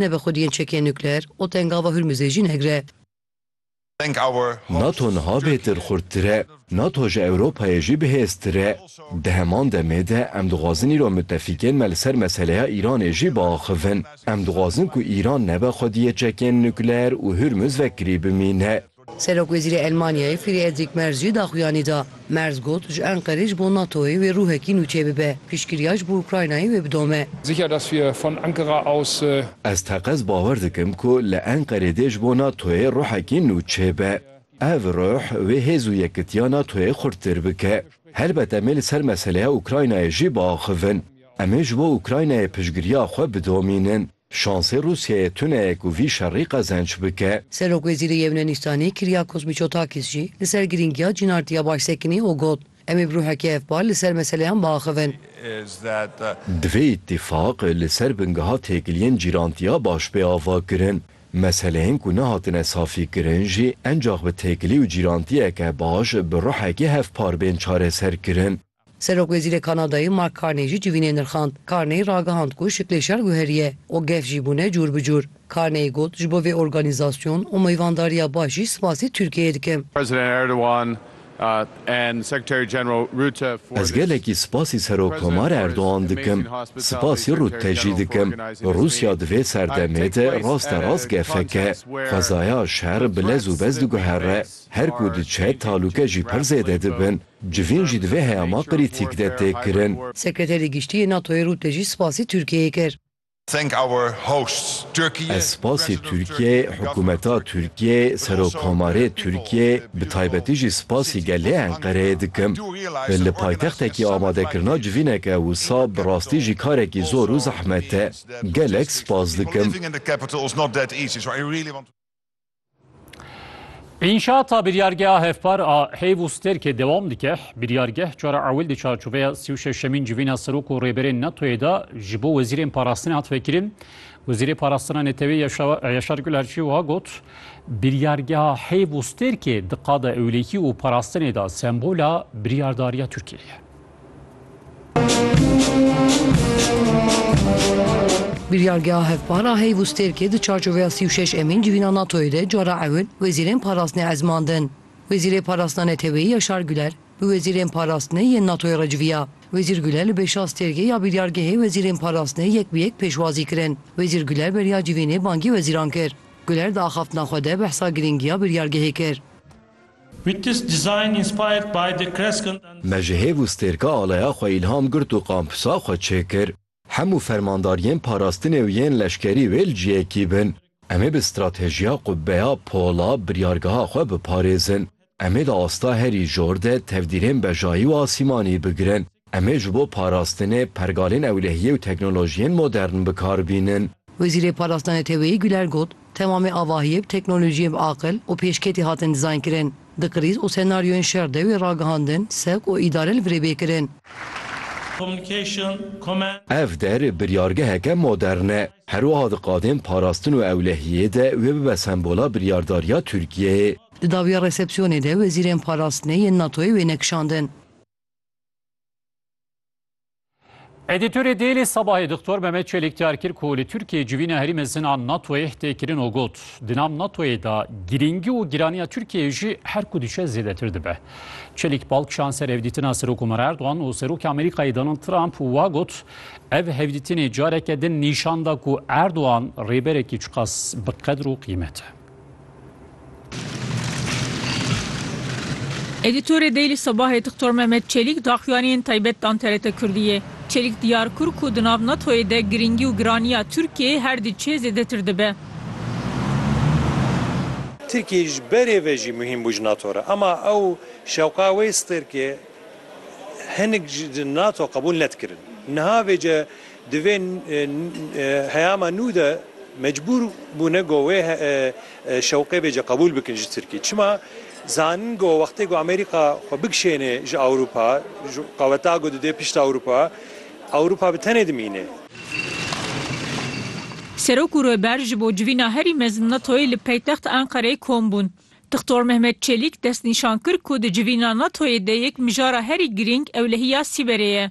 ne bi xwediyên çekên nukleer û tengava Hurmuzê jî negre. Nato niha bêtir xurttir e. Nato ji Ewropayê jî bihêztir e. Di heman demê de em dixwazin îro mitefîkên me li ser meseleya Îranê jî biaxivin. Em dixwazin ku Îran nebe xwediyê çekên nukleer û Hurmuz vekirî bimîne. Serokwezîrê Elmanyayê Friedrîk Merz jî daxuyanî da. Merz got, Ji Enqerê ji bo NATO'yê wê rûhekî nû çêbibe. Piştgiriya ji bo Ukraynayê wê bidome. Sicher, dass wir von Ankara aus. Ez teqez bawer dikim ku li Enqerê dê ji bo NATO'yê rûhekî nû çêbe. Ev rûh wê hêz û yekitiya NATO'yê xurttir bike. Helbet em ê li ser meseleya Ukraynayê jî biaxivin. Em ê ji bo Ukraynayê piştgiriya xwe bidomînin. Şansê Rûsyayê tune ye ku vî şerî qezenç bike. Serokwezîrê Yewnenîstanê Kyriakos Mitsotakis jî li ser girîngiya cînartiya başsekinê û got, Em ê bi ruhekê hevpar li ser meseleyan biaxivin. Divê îtîfaq li ser bingeha têkiliyên cîrantiya baş bê avakirin. Meseleyên ku nehatine safîkirin jî encax bi têkilî û cîrantiyeke baş bi ruhekê hevpar bên çareserkirin. Serokwezîrê Kanadayê Mark Carney jî civînê nirxand. Carney ragihand ku şiklê şer guheriye û gef jî bûne cûr bi cûr. Carney got, Ji bo vê organîzasyon û meyvandariya baş jî sipasê Tirkiyeyê dikim. Ez gelekî sipasî Serokkomar Erdogan dikim, sipasî Rutte jî dikim. Rûsya di vê serdemê de rasterast gefeke, xwezaya şer bi lez û bez diguhere. Her ku diçe talûke jî pir zêde dibin. Civîn jî di vê heyama qirîtîk de tê kirin. Sekreterê Giştî yê NATO'yê Rutte jî spasî Tirkiyeyê kir. Ez spasî Tirkiyeyê, hikûmeta Tirkiyeyê, Serokkomarê Tirkiyeyê, bi taybetî jî spasî gelê Enqereyê dikim. Li paytextekî amadekirina civîneke wisa bi rastî jî karekî zor û zehmet e. Gelek spas dikim. Înşata biryargeha hevpar a heyv û stêrkê dewam dike. Biryargeh cara ewil di çarçoveya sî û şeşemîn civîna serok û rêberên NATOyê de ji bo wezîrên parastinê hat vekirin. Wezîrê Parastina Netewê Yaşar Gulerçî wiha got, Biryargeha heyv û stêrkê di qada ewlekî û parastinê de sembola biryardariya Tirkiyeyê ye. Biryargeha hevpar a heyv û stêrkê di çarçoveya sî û şeş emîn civîna NATO'yê de cara ewil wezîrên parastinê ezmandin. Wezîrê Parastina Neteweyî Yaşar Güler bi wezîrên parastinê yên NATO'yê re civiya. Wezîr Güler li bêşa stêrgê ya biryargehê wezîrên parastinê yek bi yek pêşwazî kirin. Wezîr Güler beriya civînê bangî wezîran kir. Güler di axaftina xwe de behsa girîngiya biryargehê kir. Witness design inspired by the crescent and. Me ji hêv û stêrka aleya xwe îlham girt û kampusa xwe çêkir. Hemû fermandar yên parastinê û yên leşkerî wê li ciyekî bin. Em ê bi stratejiya qubbeya pola biryargeha xwe biparêzin. Em ê di asta herî jor de tevdîrên bejayî û asîmanî bigirin. Em ê ji bo parastinê pergalên ewlehiyê û teknolojiyên modern bi kar bînin. Wezîrê Parastina Neteweyî Güler got, Temamê avahiyê bi teknolojiyên bi aqil û pêşketî hatin dizaynkirin. Di krîz û senaryoyên şer de wê ragihandin, sek û îdare li virê bê kirin. Ev der biryargeheke modern e. Her wiha di qadên parastin û ewlehiyê de wê bibe sembola biryardariya Tirkiyeyê. Di dawiya resepsiyonê de wezîrên parastinê yên NATO'yê wê nekişandin. Edîtorê Dêlî Sabahê Doktor Mehmet Çelîk diyar kir ku li Tirkiyê civîna herî mezin a NATOyê tê kirin û got, Di nav NATOyê de girîngî û giraniya Tirkiyeyê jî her ku diçe zêdetir dibe. Çelîk bal kişand ser hevdîtina Serok Omer Erdogan û Serokê Amerîkayê Donald Trump û wa got, Ev hevdîtinê careke din nîşan da ku Erdogan rêberekî çiqas bi qedr û qîmet e. Edîtorê Daily Sabahê Dixtor Mehmet Çelîk daxuyaniyên taybet dan TRT Kurdiyê. Çelîk diyar kur ku di nav NATO'yê de girîngî û giraniya Tirkiyeyê her di çê zêdetir dibe. Tirkiyeyê ji berê ve jî muhîm bû ji NATO re. Ema ew şewqa wê stêrkê hinik ji NATO qebûl nedikirin. Niha vê ce Di vê heyama nû de mecbûr bûne ku wê şewqê bêje qebûl bikin ji Tirkî. Çima? Zanin ku wextê ku Amerîka xwe bikişênê ji Ewropa, ji qeweta ku dide pişt Ewropa, Ewropa bi tenê dimîne. Serok û Rêber ji bo civîna herî mezin NATO'yê li paytext Enqereyê kom bûn. Dixtor Mehmet Çelîk destnîşan kir ku di civîna NATO'yê de yek mijara herî girîng ewlehiya Sîberê ye.